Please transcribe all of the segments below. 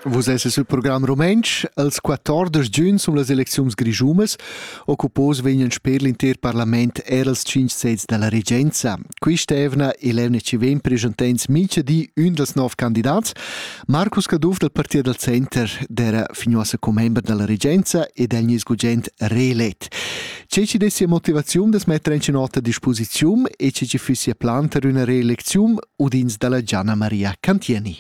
Vus esses il program rumentsch. Als 14 giugn sun las elecziuns grischumas. Occupos vegnan sper l'inter parlament er als 5 sezs dalla regenza. Quista evna e l'ENC vegn presentents mincha di ün dels nov candidats. Marcus Caduff dal Partit dal Center d'era fignuossa commember dalla regenza ed el nis gugent reelet. Tge che dessia motivaziun da metter en nota a disposiziun e tge che fissia plan per una reelecziun udins dalla Gianna Maria Cantieni.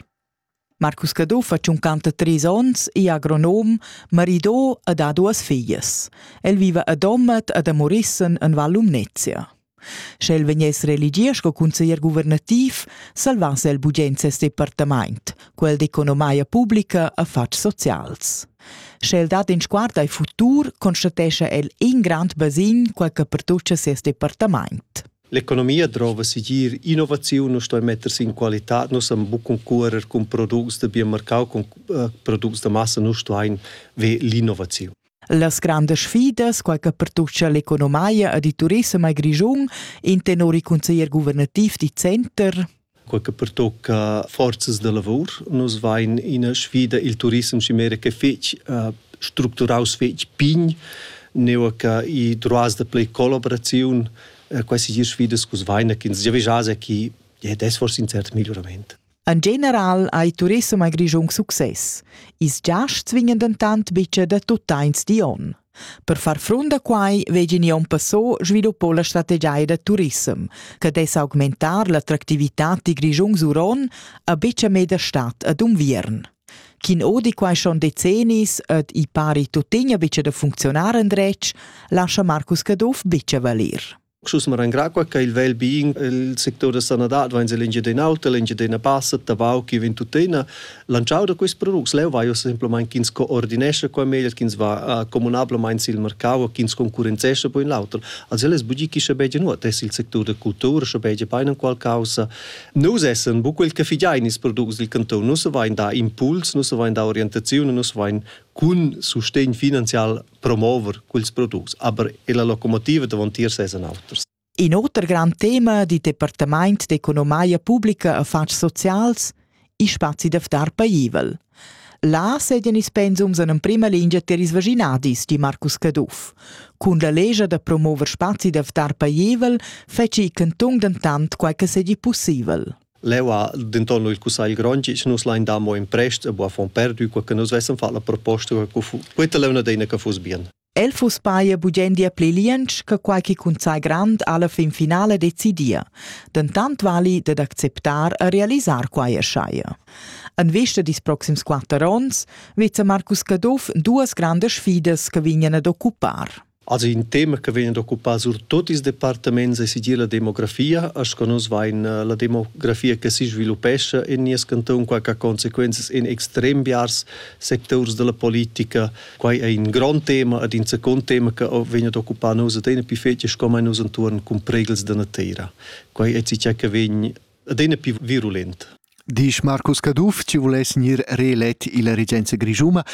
Marcus Caduff ha tschuncanta trais onns, è agronom, maridò e ha duas figlias. El viva a Domat ed a Morissen en Val Lumnezia. Sch'el vegness reeligier sco cunseglier guvernativ, salvass el bugen ses departament. Quel d'economia publica affars socials. Sch'el dat in sguard al futur, constatescha el in grand basin, quel che pertuccia ses departament. L'economia drova sigir innovaziun nu stoi metters in qualità, nu sam buc concurer cun products da biomarcau, cun uh, products da massa, nu stoin ve l'innovaziun. Las grandas sfidas, quai che pertuccia l'economia ed il turissem a Grischun, intenori consiglier guvernativ di Center. Quai che pertocca forzas da lavor. Nus vain ina sfida il turissem chimera che fetg uh, structuraus fetg pign, neu che i droas da play collaboraziun, uh, quasi sfidas cus vaina che ins già vegia chi, ja, das war sincert migliorament. En general ha il turissem a Grischun success. Ils giasts vegnan dentant bitga da tuttains di onn. Per far frunt a quai vegin Jon Passot sviluppò la strategia da turissem, che dess augmentar l'attractivitad di Grischun Suron a bitga meda stat ad Unviern. Chin odi quai schon decennis ed i pari tuttina bitga da funzionar en dretg, lascha Marcus Caduff bitga valir. Schus ma rangra qua che il vel bien il sector da sanadad va in l'Engiadin'Auta, l'Engiadina passa, Tabau chi vin tuttina lanciau da questi products. Leu vai semplamain ch'ins coordinescha qua meglio, ch'ins va comunablamain sil mercau, ch'ins concurrenzescha poi in l'auter. Also es bugi chi sche beige nuot es il sector da cultura, sche beige painan qual causa. Nus essen bu quel che figiain ils products dil canton, nus vain da impuls, nus vain da orientaziun, nus vain cun sustegn finanzial promover quels products, aber la locomotiva davon tier sesan auters. In oter grand tema di Departament d'economia pubblica affatgs socials, i spazi da ftar paivel. Là sedien ils pensums en prima lingia tier ils vaginadis, di Marcus Caduff. Cun la legia da promover spazi da ftar paivel feci cantung dentant quai che sedi possibel. Leu ha denton il cussagl grond che nus lein dar mo in prest e buca fon perdu, quei che nus vessen fat la proposta, quei leu deina che fuss bien. El fuss paia bugendia pli liensch che quai che cunsai grand alla fin finale decidia. Dentant vali dad acceptar e realisar quai eschai. En vista dis proxims quatter onns vizza Marcus Caduff duas grandes sfidas che vignan ad occupar. Also in tema che vegn ad occupar surtut ils departaments è segir la demografia, sco nus vain eh, la demografia che si sviluppescha en nies canton, qua che conseguenzas in extrem biars sectors della politica. Qua è un grande tema ed in secondo tema che vegn ad occupare noi ed è più fece come noi intorno con pregels della terra. Qua è ciò che vegn adina più virulent. Disch Marcus Caduff, chi vuless gnir reelett illa regenza grischuna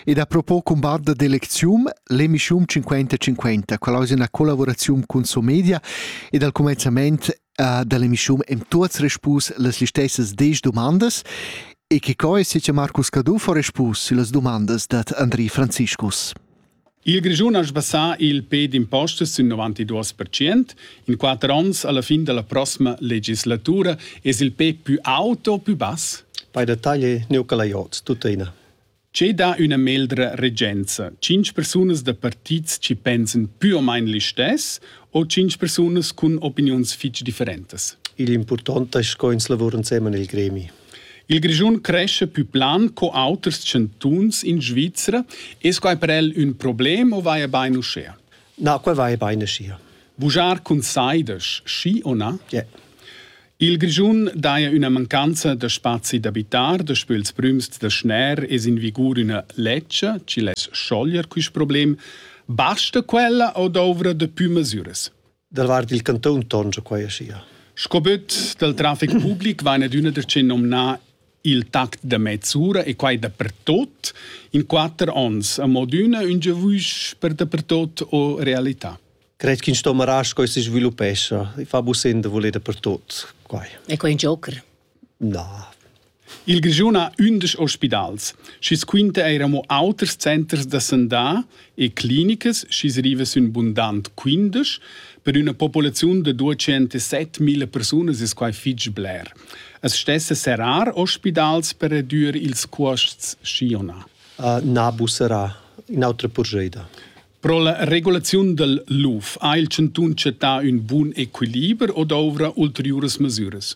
ed a propo cun barda d'elecziun l'emischiun 50-50, quella es üna collavuraziun cun Somedia ed al cumenzament uh, da l'emischiun hem tuots respus las listessas desch dumandas e che co es che Marcus Caduff ho respus süllas dumandas dad Andri Franziscus. Il Grischun ha sbassà il pe d'impostas sin 92 percent. In quatter onns alla fin della prossima legislatura es il pe più auto o più bass? Bei der Taglie Neukalajots, tuttina. C'è da una meldra regenza. Cinc persunas da partits ci pensen più o meno l'istes o cinc persunas con opinions fitch differentes? Il importante è co ins lavora insieme nel gremi. Il Grischun cresce pü plan co auters chantuns in Svizra. Es quai per el ün problem o vaja bain uschea? Na, qua vaja bain uschia. Vujar cun saidas, schi o na? Yeah. Il Grischun daja üna mancanza da spazi d'abitar, daspö ils prüms da schner es in vigur üna ledscha chi less scioglier quist problem. Basta quella o douvra da pü masüras? Dal vart il cantun tongia quai aschia. Sco böt dal trafic public vaina d'üna da che nomnar il tact da mezz'ura e quai dapertot in quatter ons a mod üna ün giavüsch per dapertot o realità. Cred che in stomarà coi si sviluppescha, fa busenda voler dapertot quai. E quai è un joker. Na. Il Grischun ha ündesch ospidals, schi's quinta eir amo auters centers da sandà e clinicas schi's riva sün bundant quindesch. Per üna populaziun da 207.000 persunas es quai fich bler. As stessa serrar ospidals per redüer ils cuosts, schi o na? Uh, na busserà, in'autra purscheida. Pro la regulaziun dal LUF ha il chantun chattà ün bun equiliber o douvra ulteriuras masüras?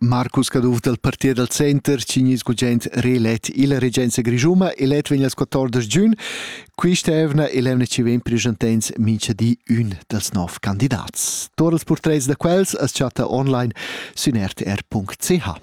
Marcus Caduff dal partier dal center cignis gugent reelett illa regenza grischuma elet vegn als 14 giun. Quista evna e l'evna chi vegn preschantents mincha di ün dals nov candidats. Tuot els portrets da quels as chatta online sün rtr.ch.